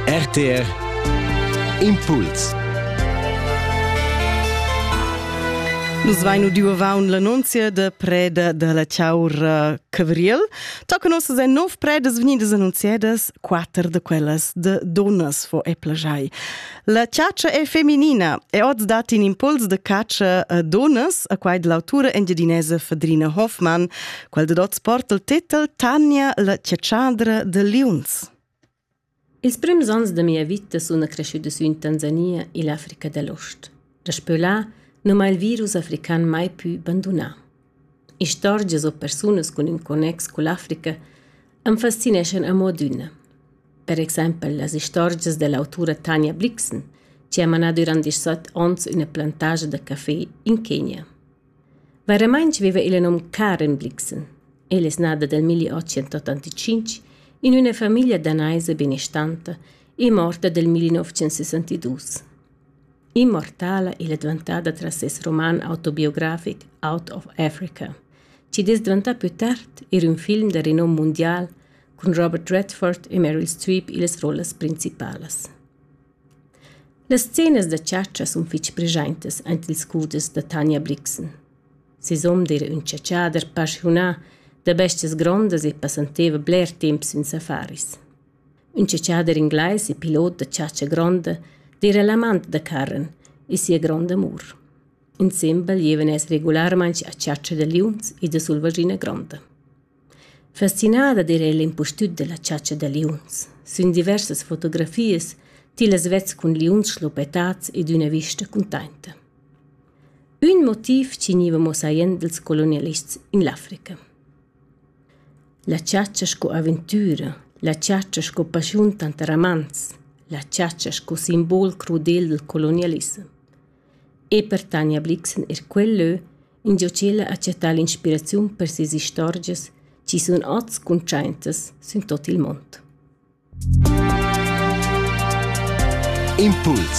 RTR Impuls Nus vein udiu avaun l'annunzia da preda da la Chaura Cavriel. Toca nossas en nov predas venidas annunziadas, quatter de quellas de donas fo e plagiai. La ciaccia è feminina e oz dat in impuls de caccia a donas, a quai l'autura engiadinese Fadrina Hoffmann Quel dad oz porta il titel Tania la cetschadra de liuns. Ils prims ans de mia vita sun cresciuts sü in Tanzania e l'Africa dell'Ost. Daspö là non m'ha il virus african mai più bandunà. Istorgias o persunas cun ün connex cu l'Africa am fascineschan a mod üna. Per exempel las istorgias dell'autura Tania Blixen, che ha manà durant 17 ons üna plantagia da café in Kenya. Vairamaing viva illa nom Karen Blixen. Ella es nata dal 1885 in üna famiglia danaisa benestanta e morta dal 1962. Immortala ella è dvantada tras ses roman autobiografic Out of Africa, chi'd es dvantà pü tard eir ün film da renom mundial cun Robert Redford e Meryl Streep illas rollas principalas. Las scenas da chatscha sun fich preschaintas aint ils cuders da Tanja Brixen. Sisum d'eira ün chatschader paschiunà da bestias grondas e passanteva bler temp sün safaris. Ün chatschader inglais e pilot da chatscha gronda d'eira l'amant da Karen e sia gronda amur. Insembel gievan els regularmaing a chatscha da liuns e da sulvaschina gronda. Fascinada d'eira el impustüt da la chatscha da liuns. Sün diversas fotografias tillas vets cun liuns schluppetats ed üna vista cuntainta. Ün motiv chi gniva mossaiend dals colonialists in l'Africa. La chatscha sco aventüra, la chatscha sco paschiun tanter amants, la chatscha sco simbol crudel dal colonialissem. E per Tanja Blixen eir quel lö ingio ch'ella ha chattà l'inspiraziun per sias istorgias chi sun ots cuntschaintas sün tuot il mond. Impuls